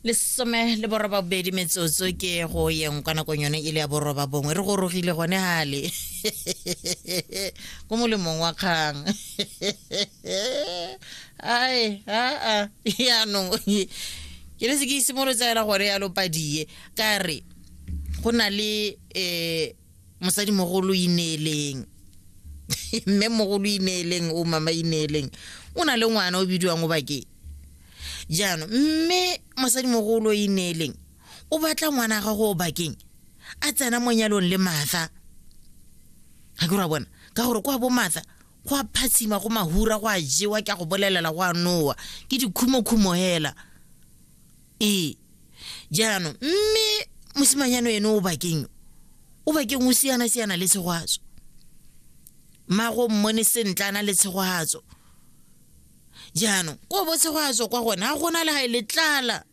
lesome le boroba bobedi metsotso ke go yeng kwa nakong yone e le ya boroba bongwe re gorogile gone gale ko molemong wa kgang ai aa yaanong ke le se ke isimolo tsaela gore ya lopadie ka re go na le um mosadi mogolo ineeleng mme mogolo ineeleng o mama ineeleng o na le ngwana o bidiwang o bakeng jaanong mme mosadi mogolo ineeleng o batla ngwana ga go o bakeng a tsena mo nyalong le matha ga ke ra bona ka gore kwa bo matha go a phatshima go mahura go a jewa ke a go bolelela go a nowa ke dikhumokhumo hela ee jaanong mme mosimanyano ene o bakeng o bakeng o siana-siana le tshegwatso mago mmone sentle a na le tshegwatso jaanong ko bo tshegwatso kwa gone ga gona le ga e le tlala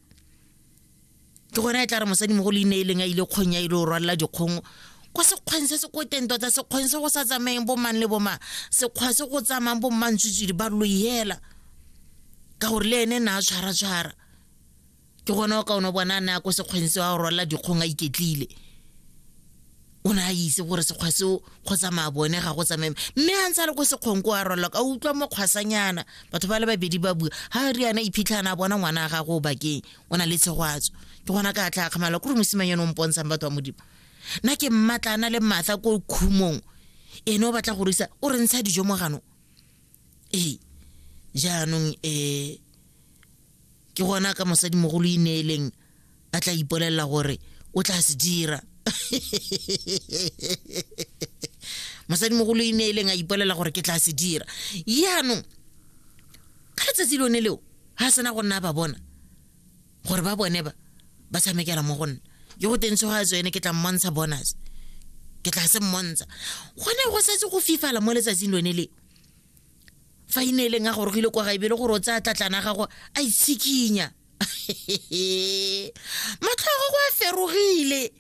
ke gona e tla re mosadi mo go le ine e leng a ile kgong ya ile o rwalela dikgong kwa sekgweng se se ko teng tota sekgweng se go sa tsamayeng bomang le bomang sekgwa se go tsamayang bommantswitswidi ba loyela ka gore le ene ne a tshwara-tshwara ke gone o ka ono bona a ne a ko sekgweng se wa rwala dikgong a iketlile o ne a itse gore sekgwa seo go tsamaya bone ga go tsamaye mme a ntse a le ko sekgong ko a rwala ka utlwa mokgwasanyana batho ba le babedi ba bua ga re yana iphitlhana a bona ngwana a gage o bakeng o na le tshegwatso ke gona ka tla kgamala kore mosimang yone o mpontshang batho ba modimo nna ke mmatla a na le matla ko khumong ene o batla go risa o re ntsha dijo mo ganong ee jaanong um ke gona ka mosadimogolo e neeleng a tla ipolelela gore o tla se dira mosadimogolo e neeleng a ipolelela gore ke tla se dira jaanong ka letsatsi lone leo ga sena go nna ba bona gore ba bone ba ba tshamekela mo go nna ke go teng tshoga tsone ke tla mmontsha bonus ke tla se mmontsha gone go setse go fifala mo letsatsing lone leo fa e ne e leng a gorogile kwa gaebe le gore o tsaya tlatlana a gago a itshikinya matlho a gago a ferogile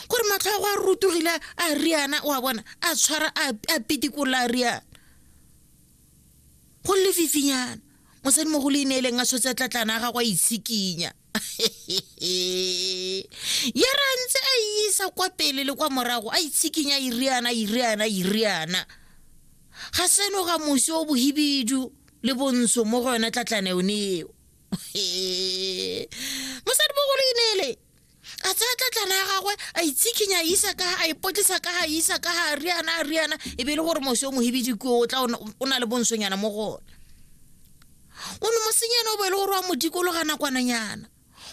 gore matlho a gago a rutogile a riana o a bona a tshwara a pitikola a riana go lefifinyana mosadi mo go le ineeleng a tshotse tlatlana a gagwe a itshikinya ya ra ntse a isa kwa pele le kwa morago a itshikinya iriana iriana iriana ga seno ga mosi o bohibidu le bontsho mo go yone tlatlana yone eo mosadi mo go le ineeleng a tsaya tlatlana ya gagwe a itshikhinya isa ka a ipotlisa ka a isa ka a riana a riana e be e le gore mose o mohebedi ko o tla o na le bonsonyana mo gona o ne mosenyana o bo e le gore wa mo dikologa nakwananyana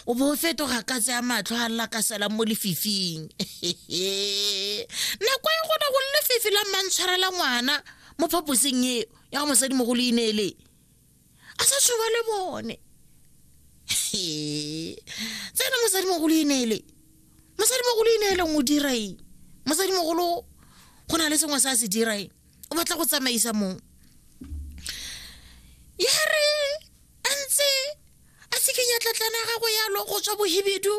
o bo o fetoga ka tsaya matlho a lla ka salang mo lefifing nako e gona go lefifi la mmantshwarela ngwana mo phaposeng eo ya go mosadimogolo e ne e le a sa tshoba le bone tsena mosadimogolo e neele mosadimogolo e neeleng o dira eng mosadimogolo go na le sengwe se a se dira eng o batla go tsamaisa mong ya re a ntse a tshikenya tlatlana gagwe yalo go tswa bohibidu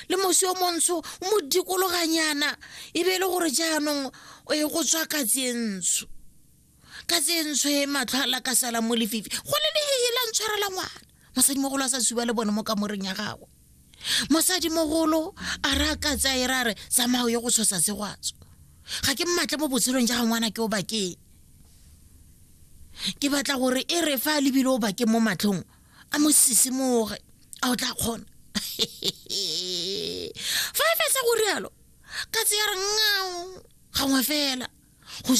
le mosi o montsho o mo dikologanyana e be e le gore jaanong e go tswa katsi e ntsho ka tsentshwe matlho a la ka sala mo lefifi go le lehehe la ntshwarela ngwana mosadimogolo a sa suba le bone mo kamoreng ya gagwe mosadimogolo a re a ka tsaye ra re tsamao ye go tshosa segwatso ga ke mmatle mo botshelong ja ga ngwana ke o bakeng ke batla gore e re fa a lebile o bakeng mo matlhong a mo sisimoge a o tla kgona fa e fetsa go rialo ka tseya re ngao gangwe fela